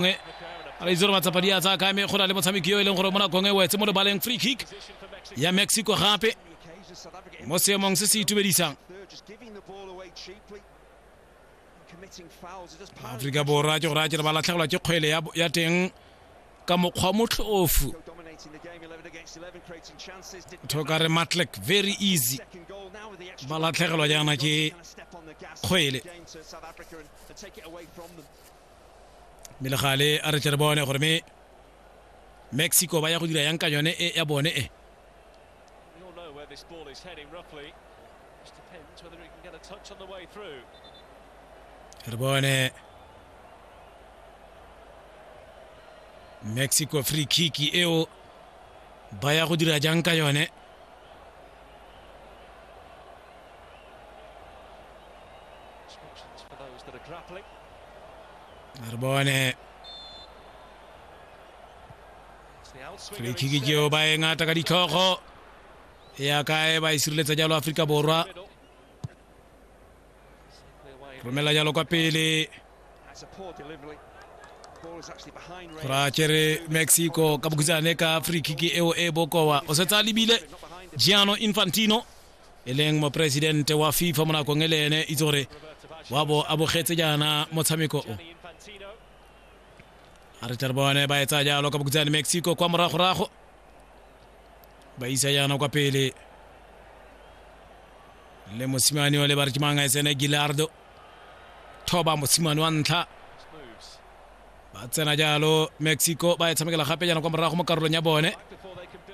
e re itse gore matsapa di a tsaya kame go na le motshameki yo e leng gore mo nakong e wetse mo lebaleng free kick ya mexico gape mo seemong se se itumedisang aforika borwa ke gore a kere ba latlhegelwa ke kgwele ya teng ka mokgwa motlhoofu thoka re matlek very easy ba latlhegelwa jaana ke kgwele mme le gale a re tle re bone gore me mexico ba ya go dira yang ka yone e ya bone e re bone mexico free kick eo ba ya go dira jang ka yone Narbonne free kick ke eo ba e ngata ka ditlhogo e ya kae ba e sireletsa jalo aforika borwa romela jalo kwa pele ra kere mexico ka bokhutshwane ka free kick eo e bokowa o setse a lebile giano infantino e leng moporesidente wa fifa mo nakong e le ene itse gore wa bo a bogetse jaana motshameko o a re tle re bone ba etsa jalo ka bokutsane mexico kwa moragorago ba isa jaana kwa pele le mosimane o le ba re ke mang a e tsene gilardo thoba mosimane wa ntlha ba tsena jalo mexico ba e tshamekela gape jaana kwa morago mo karolong ya bone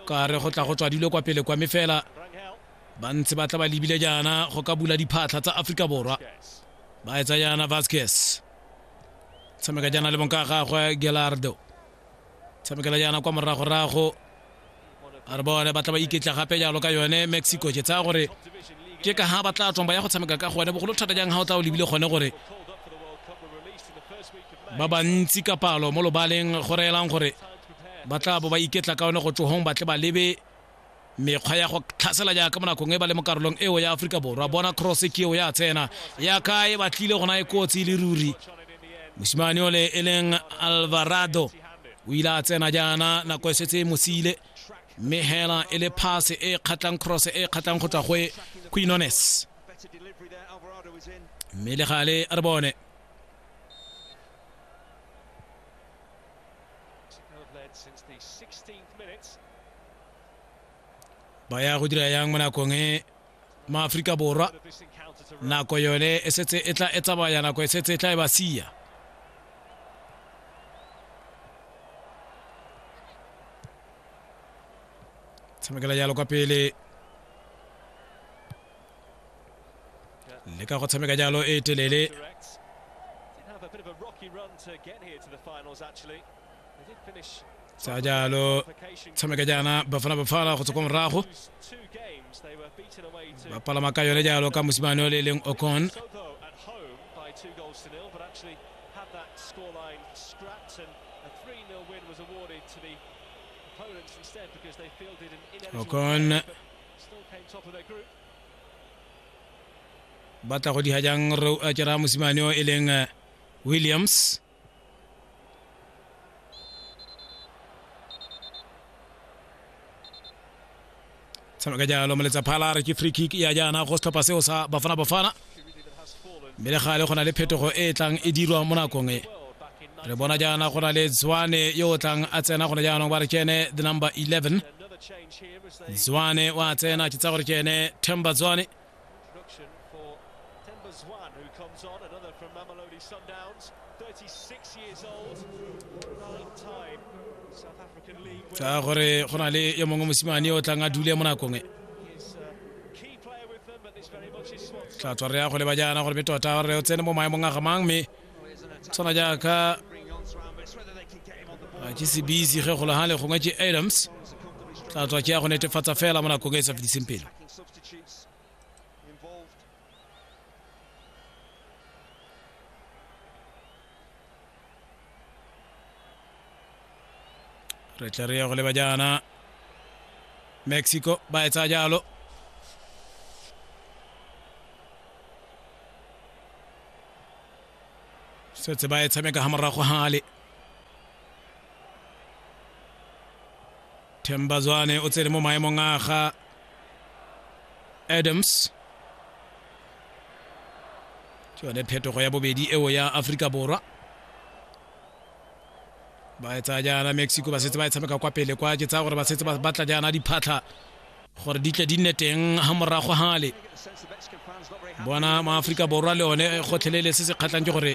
ka re go tla go tswa dilo kwa pele kwa mefela ba ntse ba tla ba lebile jaana go ka bula diphatlha tsa aforika borwa ba etsa jaana vasquez tshameka jaana le bonka gagwe gelardo tshamekela yana kwa moragorago a re bone ba tla ba iketla gape jalo ka yone mexico ke tsaya gore ke ka ga ba tla tswang ba ya go tshameka ka gone bogolo thata jang ga o tla o lebile gone gore ba bantsi ka palo mo lobaleng go reelang gore ba tla bo ba iketla ka one go tsogong ba tle ba lebe mekgwa ya go tlhasela jaaka mo nakong e ba le mo karolong eo ya aforika borwa bona cross ke eo ya tsena ya ka e batlile gona e kotsi le ruri mosimane ole e leng alvarado o ile a tsena jaana nako e setse e mosile mme hela e le pass e kgatlang cross e kgatlang go tswa go e quinones mme le gale re bone ba ya go dira yang mo nakong e maaforika borwa nako yone e setse e tla e tsamaya nako e setse e tla e ba sia tshamekela jalo kwa pele le ka go tshameka jalo e telele sa jalo tshameka jaana bafana bafala go tswa kwa morago ba palama ka yone jalo ka mosimane o le e leng okon okon batla go diha jang re a kera mosimane o e leng eh, williams seno ka jalo meletsa phala re ke free kick ya jaana go setlhopha seo sa bafana bafana mme le gale go na le phetogo e e tlang e dirwa mo nakong e re bona jaana go na le zwane yo o tlang a tsena gone jaanong ba re kene the number 11 zwane wa tsena ke tsa gore kene temba zwane Introduction for Themba Zwane, who comes on, another from Mamelodi Sundowns, 36 years old, nine-time South African League winner. gore go na le yo mongwe mosimane o tlang a dule mo nakong e His uh, key player with them, but this very much is Swanson. tla tswa re ya go leba jaana gore be tota gore o tsene mo maemong a gamang mme tshwana jaaka Bring on Zwane, but it's whether they can get him on the ball. a ke sebisi ge golo gale gongwe ke adams tla tswa ke ya go netefatsa fela mo nakong e e sa fetiseng pele Attacking substitute. substitutes involved. re tla re ya go leba jaana mexico ba etsa jalo setse ba e tshameka ga morago gale themba zwane o tsene mo maemong a ga adams ke yone phetogo ya bobedi eo ya aforika borwa ba e tsaya jaana mexico ba setse ba e tshameka kwa pele kwa ke tsaya gore ba setse ba batla jaana diphatlha gore di tle di nne teng ga morago gale bona maaforika borwa le one gotlhelele se se kgatlhang ke gore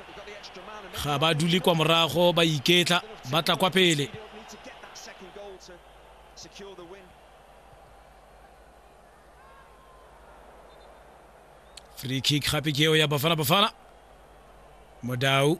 ga ba dule kwa morago ba iketla ba tla kwa pele free kick gape ke eo ya bafana bafana modau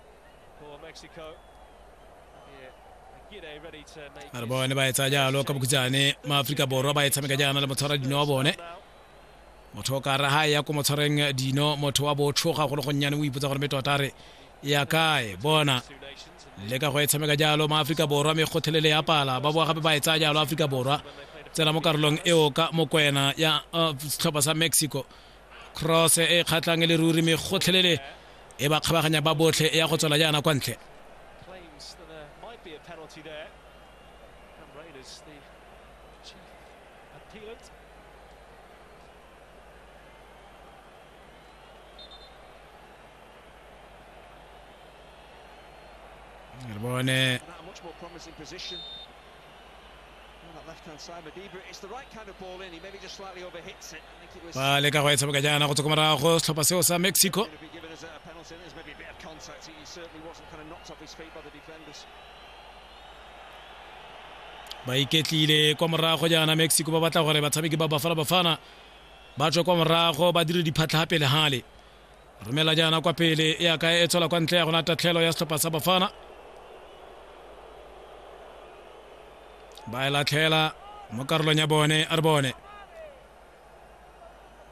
for Mexico. Yeah. Gide ready to make a re bone ba etsa jalo ka bokhutsane maaforika borwa ba e tshameka jaana le motshwara dino wa bone motho o ka re ha e ya ko motshwareng dino motho wa botlhoga go le gonnyane o ipotsa gore me tota re e ya kae bona two nations and le ka go e tshameka jalo maaforika borwa me kgothelele ya pala ba boa gape ba e tsaya jalo aforika borwa tsena mo karolong eo ka mokwena ya uh, setlhopha sa mexico cross e kgatlhang e le ruri me gotlhelele e ba kgabaganya ba botlhe e ya go tswela jaana kwa ntle re bone ba leka go e tshameka jaana go tswa ko morago setlhopha seo sa mexico ba iketlile kwa morago jaana mexico ba batla gore batshameki ba bafana bafana ba tswe kwa morago ba dire diphatlha pele gale romela jaana kwa pele e ya kae e tshola kwa ntle ya gona tatlhelo ya setlhopha sa bafana ba e latlhela mo karolong ya bone a re bone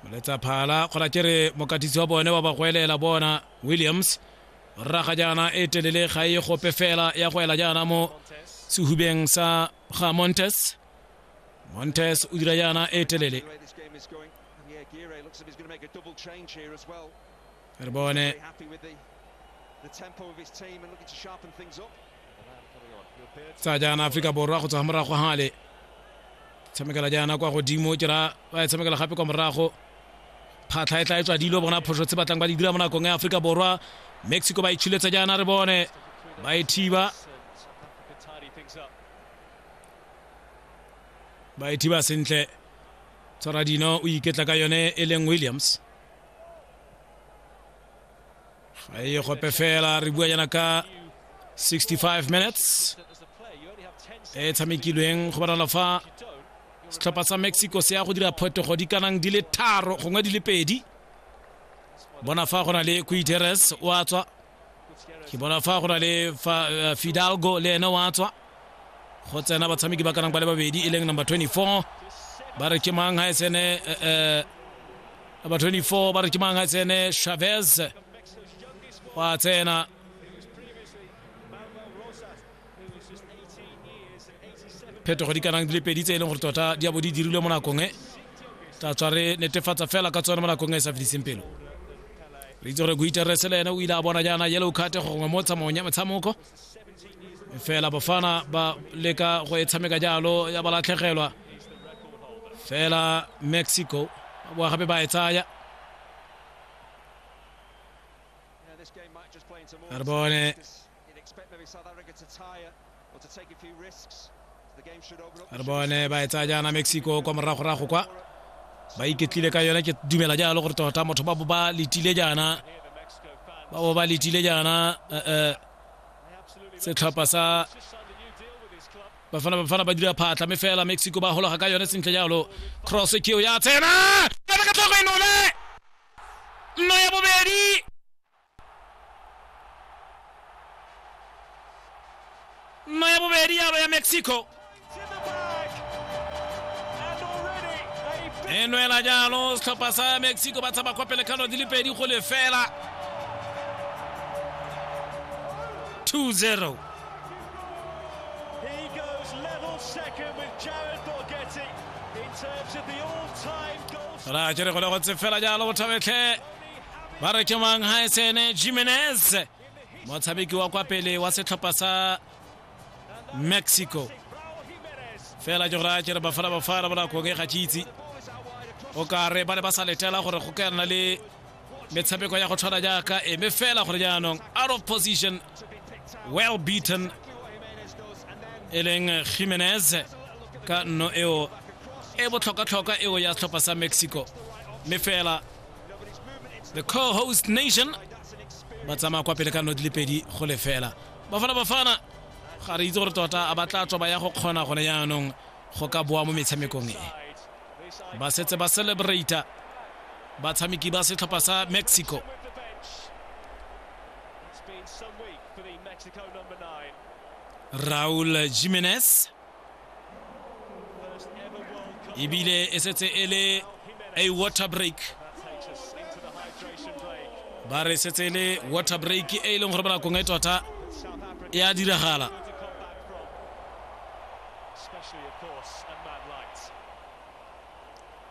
moletsa phala kgona ke re mokatisi wa bone wa bagwelela bona williams rraga jaana e telele ga e gope fela ya go ela jaana mo sehubeng sa ga montes montes o dira jaana e telele Carbone. tsa jaana aforika borwa go tswa morago gale tshamekela jaana kwa godimo ke ra ba e tshamekela gape kwa morago phatlha e tla e tswa dilo bona phoso tse batlang ba di dira mo nakong ya aforika borwa mexico ba itshiletsa jaana re bone ba e thiba ba e thiba sentle tsaradino o iketla ka yone e leng williams ga e gope fela re bua yana ka 65 minutes e tshamekilweng go bonala fa setlhopha sa mexico se ya go dira phetogo di kanang di le tharo gongwe di le pedi bona fa go na le kuiteres wa tswa ke bona fa go na le eh, fidalgo le ene wa tswa go tsena batshameki ba kanang ba le babedi e leng number 24 ba re ke mang ga e tsene eh, eh, number 24 ba re ke mang ga e tsene chavez wa tsena phetogo di kanang di le pedi tse e leng gore tota di a bo di dirilwe mo nakong e tla tswa re netefatsa fela ka tsone mo nakong e sa fediseng pelo re itse gore guiteres le ene o ile a bona jaana yellow card gongwe mo tsamaong ya metshamoko fela bofana ba leka go e tshameka jalo ya ba latlhegelwa fela mexico ba boa gape ba e tsaya re bone re bone ba e tsaya jaana mexico kwa moragorago kwa ba iketlile ka yone ke dumela jalo gore tota motho ba bo ba letile jaana ba bo ba letile jaana eh, eh, setlhopha sa bafana bafana ba dira phatla me fela mexico ba hologa ka yone sentle jalo cross ke ya tsena ka ka tlhogo e nole nno ya bobedi nno ya bobedi yalo ya mexico e nwela jalo setlhopha sa mexico ba tshaba kwa pele kano di le pedi go lefela 2-0 He goes level second with Jared Borghetti in terms of the all-time goal. ra ke re go le go tsefela jalo bothabetlhe ba re ke mang haesene jimenez motshameki wa kwa pele wa setlhopha sa mexico fela ke gore a kere bafala bafala bonakong e ga ke itse o kare ba ne ba sa letela gore go ka nna le metshameko ya go tshwana jaaka eme fela gore jaanong out of position well beaten e leng jimenez ka nno eo e botlhokwatlhokwa eo ya setlhopha sa mexico mme fela the co-host nation ba tsamaya kwa pele ka nno di le pedi go lefela bafana bafana ga re itse gore tota a ba tla tswa ba ya go kgona gone yaanong go ka boa mo metshamekong e ba setse ba celebrata batshameki ba setlhopha sa mexico raul jimenez ebile e setse e le a water break ba re setse e le water break e e leng gore bonakong e tota e a diragala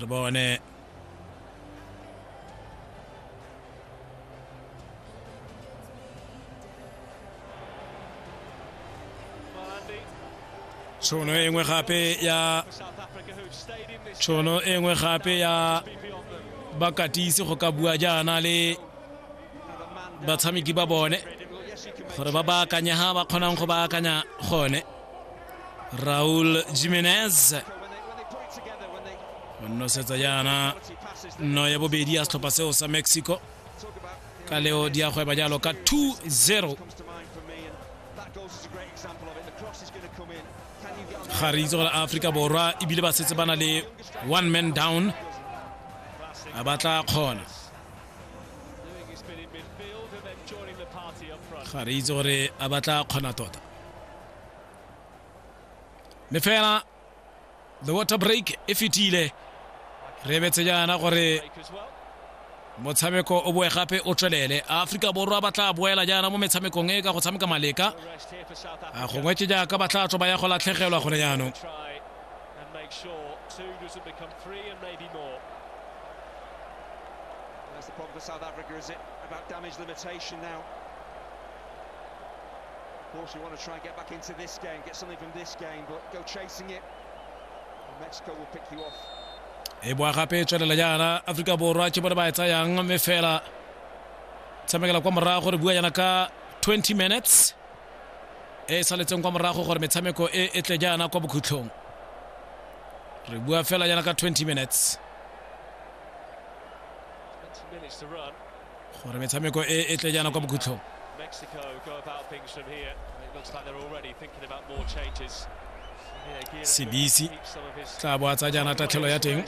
re bone tšhono e nngwe gape ya tšhono e nngwe gape ya bakatisi go ka bua jaana le batshameki ba bone gore ba baakanye ga ba kgonang go baakanya gone raul jimenez o nnosetsa jaana nno ya bobedi ya setlhopha seo sa mexico ka leo di a gweba jalo ka 2-0 ga re itse gore aforika borwa ebile ba setse ba na le one man down a ba tla kgona ga re itse gore a ba tla kgona tota mme fela the water break e fetile re betse jaana gore motshameko o boe gape o tswelele aforika borwa ba tla boela jaana mo metshamekong e ka go tshameka maleka a gongwe ke jaaka ba tla tswa ba ya go latlhegelwa gone jaanong That's the problem for South Africa, is it? About damage limitation now. Of course, we want to try and get back into this game, get something from this game, but go chasing it. Mexico will pick you off. e boa gape e tswelela jaana aforika borwa ke bone ba e tsayang mme fela tshamekela kwa morago re bua jaana ka 20 minutes e e saletseng kwa morago gore metshameko e e tle jaana kwa bokhutlhong re bua fela jaana ka 20 minutes 20 minutes to run. gore metshameko e e tle jaana kwa bokhutlhong Mexico go about things from here. It looks like they're already thinking about more changes. sebisi tla bo a tsa jaana tatlhelo ya teng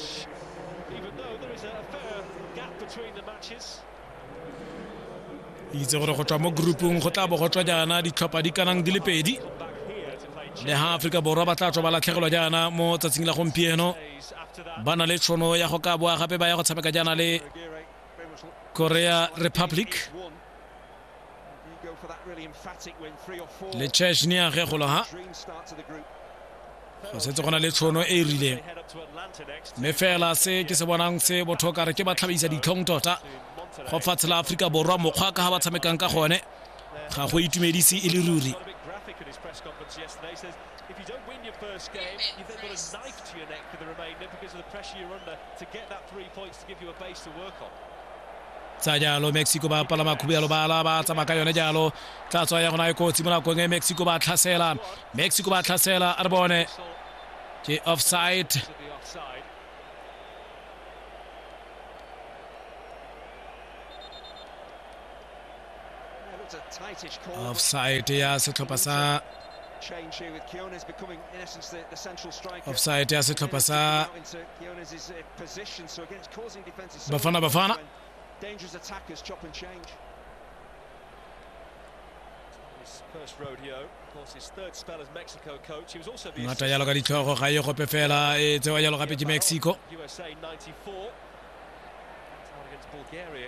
itse gore go tswa mo groupung go tla bo go tswa jaana ditlhopha di kanang di le pedi le ha aforika borwa ba tla tswa ba latlhegelwa jaana mo tsatsing la gompieno ba na le tšhono ya go ka boa gape ba ya go tshameka jaana le Korea Republic le cheshne ya ge golo ha go setse gona le tshono e e rileng mme fela se ke se bonang se botho kare ke ba tlhabisa ditlhong tota go fatshe la aforika borwa mokgwa ka ga ba tshamekang ka gone ga go itumedise e le ruri tsa jalo mexico ba pala makhubu ya lobala ba tsamaya ka yone jalo tla tswa ya gona e kotsi mo nakong e mexico ba tlhasela mexico ba tlhasela a re bone ke offside offside ya setlhopha sa offside ya setlhopha sa bafana bafana Dangerous attackers chop and change. ngata jalo ka ditlhogo ga e gope fela e tsewa jalo gape ke mexico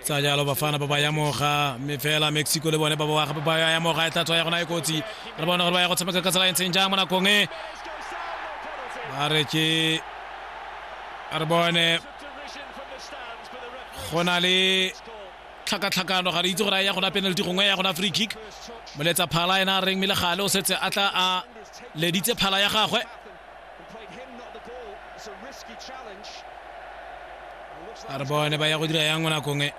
tsa jalo bafana ba ba yamoga mme fela mexico le bone ba ba ba ya yamoga e tla tswa ya gona e kotsi re bone gore ba ya go tshameka ka tsela e ntseng jang mo nakong e ba re ke re bone go na le tlhakatlhakano ga re itse gore a ya gona penalty gongwe ya gona free kick moletsa phala ena a reng mme le gale o setse a tla a leditse phala ya gagwe a re bone ba ya go dira yang mo nakong e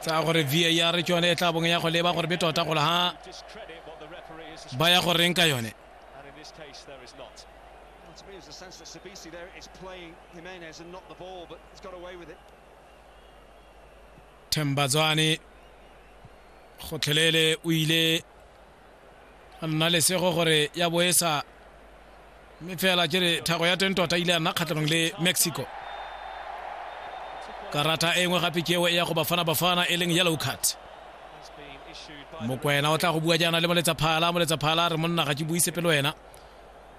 tsa gore var ke yone e tla bong ya go leba gore be tota gole ha ba ya go reng ka yone to me, there's a sense that Sabisi there is playing Jimenez and not the ball, but he's got away with it. Tembazani gotlhelele o ile nna lesego gore ya bo e sa mme fela ke re thago ya teng tota ile ya nna kgatlhanong le mexico karata e nngwe gape keo e ya go bafana bafana e leng yellow card mokwena o tla go bua jaana le moletsa phala moletsa phala re monna ga ke buise pelo wena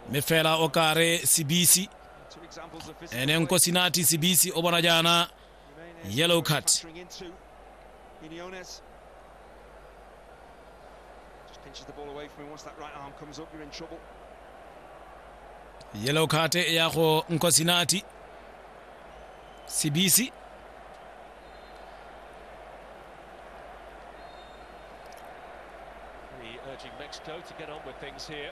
mme fela o kare sebisi ene nko sinati sebisi o bona jaana Yellow card. Yellow card ya go Nkosinati. Sibisi. urging Mexico to get on with things here.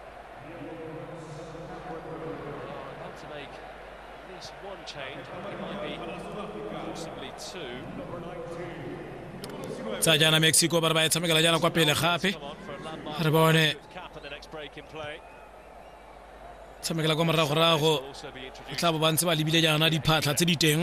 About to make at least one change, it might be possibly two. tsa jaana mexico ba re ba e tshamekela jaana kwa pele gape re bone tshamekela kwa moragorago e tla bo ba ntse ba lebile jaana diphatlha tse di teng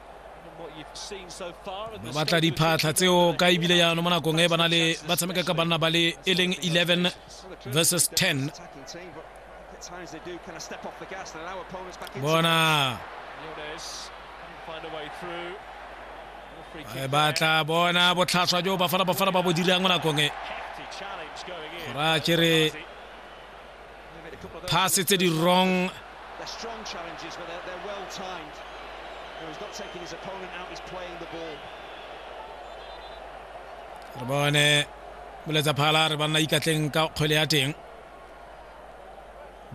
ba batla diphatlha tseo ka ebile jaanong mo nakong e ba na le ba tshameka ka banna ba le e leng 11 versus 10 bona e batla bona botlhaswa jo bafana bafana ba bo dirang mo nakong e gora kere phase tse di wrong re bone boletsa phala re banna ikatleng ka kgwele ya teng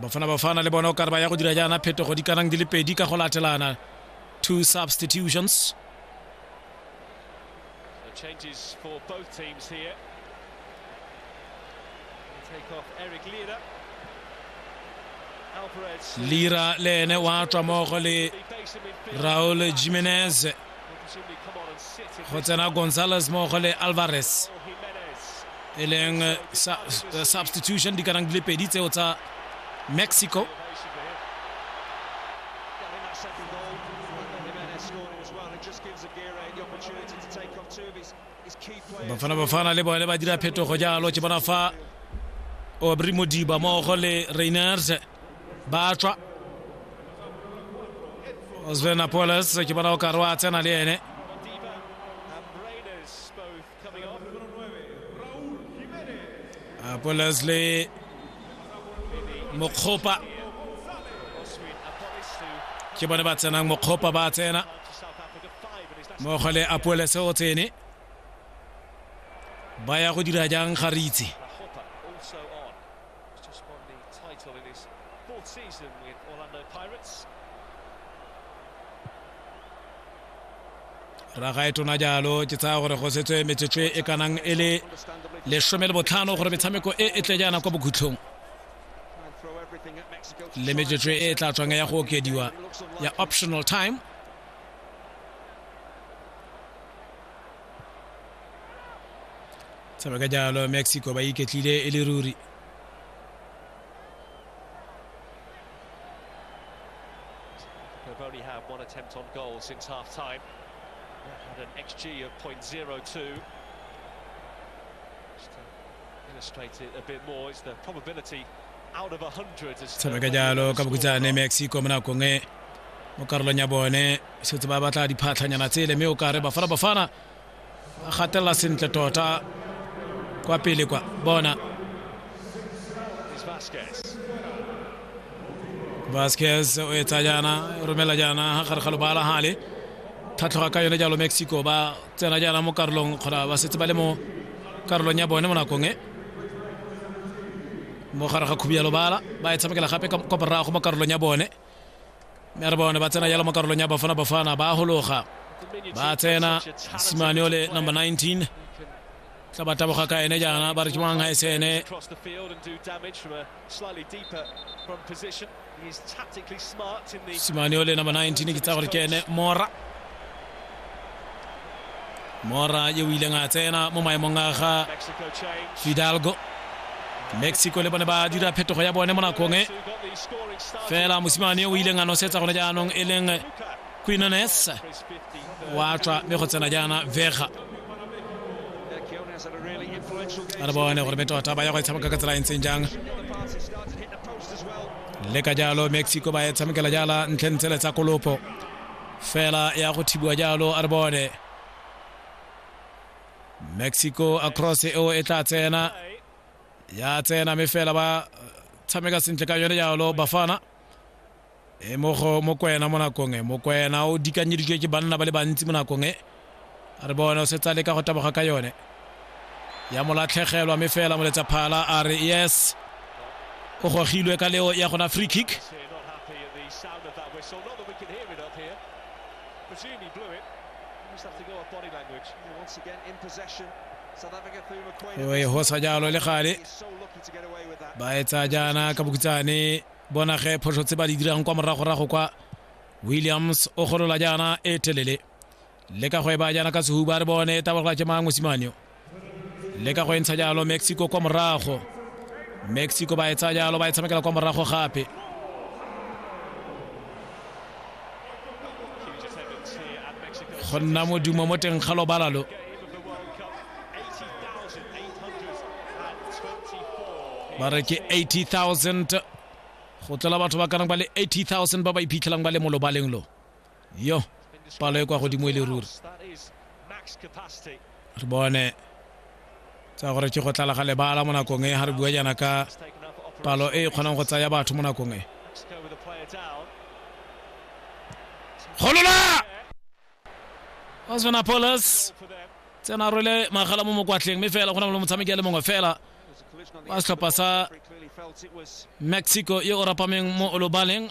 bafana bafana le bona o kare ba ya go dira jaana phetogo di kanang di le pedi ka go latelana two substitutions So changes for both teams here. Take off Eric Lira. Lira le ene wa tswa mogo le Raul Jimenez go tsena Gonzalez mogo le Alvarez e leng eh, eh, substitution di kanang di le pedi tseo tsa Mexico bafana bafana le bone ba dira phetogo jalo ke bona fa obri modiba mmogo le rainers ba tswa osven apoles ke bona o kare wa tsena le ene A po Leslie Mokgopa ke bone ba tsenang Mokgopa ba tsena mmogo le Apoele se o tsene ba ya go dira jang ga re itse He's just won the title in his fourth season with Orlando Pirates. raga e tona jalo ke tsaya gore go setswe metsotso e kanang e le lesome le botlhano gore metshameko e e tle jaana kwa bokhutlhong le metsotso e e tla tswang ya go okediwa ya optional time tsebe ka jalo mexico ba iketlile e le ruri They've only had one attempt on goal since half time. They've had an XG of 0.02. Just to illustrate it a bit more, it's the probability out of 100 as tsebe ka jalo ka bokhutshwane mexico mo nakong e mo karolong ya bone setse ba batla diphatlhanyana tsele mme o kare bafana bafana ba gatelela sentle tota kwa pele kwa bona vasquez o etsa jaana o romela jaana ga gare ga lobala gale tlhatlhoga ka yone jalo mexico ba tsena jaana mo karolong kgona ba setse ba le mo karolong ya bone mo nakong e mo gare ga khubi ya lobala ba e tshamekela gape kwa borago mo karolong ya bone mme re bone ba tsena jalo mo karolong ya bafana bafana ba gologa ba tsena simane ole number 19 tla ba taboga ka ene jaana ba re ke mang ga e se ene simane ole number 19 ke tsa gore ke ene mora mora yo o ileng a tsena mo maemong a ga fidalgo mexico le bone ba dira phetogo ya bone mo nakong e fela mosimane o ileng a nosetsa gone jaanong e leng quinones wa tswa mme go tsena jaana vega a re bone gore metota ba ya go e tshameka ka tsela e ntseng jang le ka jalo mexico ba e tshamekela jala ntlheng tsele tsa kolopo fela ya go thibiwa jalo a re bone mexico across eo e tla tsena ya tsena mme fela ba tshameka sentle ka yone jalo bafana e mo go mokwena mo nakong e mokwena o dikanyeditswe ke banna ba le bantsi mo nakong e a re bone o setsa le ka go taboga ka yone ya molatlhegelwa mme fela moletsa phala a re yes o gogilwe ka leo ya gona free kick e hosa jalo le gale ba etsa jaana ka bokutsane bonage phoso tse ba di dirang kwa moragorago kwa williams o golola jaana e telele leka go e baya jaana ka sehuba re bone e tabologa ke mang mosimane yo leka go e ntsha jalo mexico kwa morago mexico ba e tsaya jalo ba e tshamekela kwa morago gape go nna modumo mo teng ga lobala lo ba re ke 80000 go tlola batho ba kanang ba le 80000 ba ba iphitlhelang ba le mo lobaleng lo yo palo e kwa godimo e le ruri re bone tsa gore ke go tlala ga lebala mo nakong e ga re bua jaana ka palo e e kgonang go tsaya batho mo nakong e golola osvana polis tsena rwele magala mo mokwatleng mme fela go na le motshameki a le mongwe fela wa setlhopha sa mexico yo o rapameng mo olobaleng